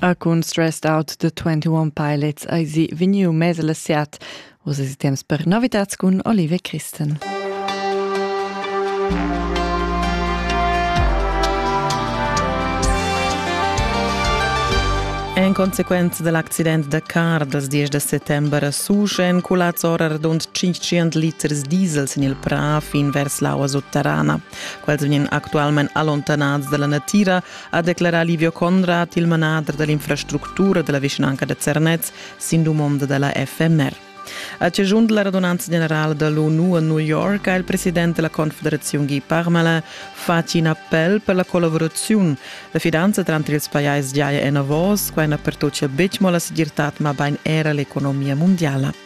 A cun Stressed Out the 21 Pilots eisi vegniu mess la siat. Uss es temps per novitats cun Olive Christen. En consequenza dell'accident da car dals 10 da settembre a Susch èn culads ora radund 500 liters diesel sin il prà fin vers l'aua sotterrana. Quels vegnan actualmain allontanats dalla natira ha declarà Livio Conrad, il manader da l'infrastructura da la vischnanca da Zernez, sin dumonda da la FMR. A ciascun della radunanza generale dell'ONU a New York ha il presidente della Confederazione Guy Parmelin fatg in appell per la collaborazione. La fidanza tra ils pajais giaja en avos, quai na pertocia betg mo la segirtad, ma bain era l'economia mondiala.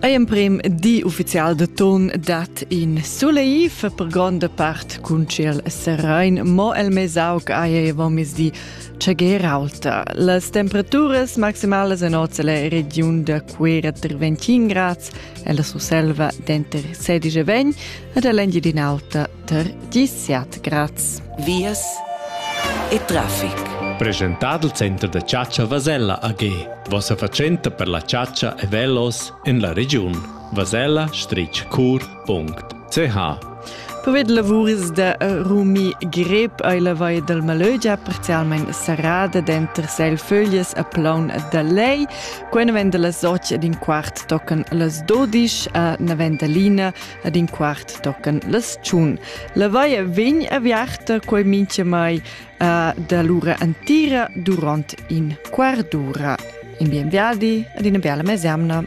Ei emprem di ufficial de ton dat in suleif per gronda part cun ciel serain, mo el mesauc ei vomisdi tschegerauta. Las temperaturas maximalas en oz la regiun da Cuera ter 21 grads e la Surselva denter 16 e 20 ed all'engiadin'alta Tar dissert graz. Vias e traffic. Presentad il center da chatscha Vasella AG, vossa fatschenta per la chatscha e velos en la regiun vasella-cur.ch. Povid lavuris da Rumi Grep ei la vai dal Malögia parzialmein serrada denter Seilföglies a Plaun da Lei. Quei venda las och ed in quart tocan las dodisch a Navendalina, Ad in quart tocan las tschun. La vaia vegn aviarta quei minchamai uh, da l'ura antira durant in quart d'ura. In bienviadi ad ina biala mesemna.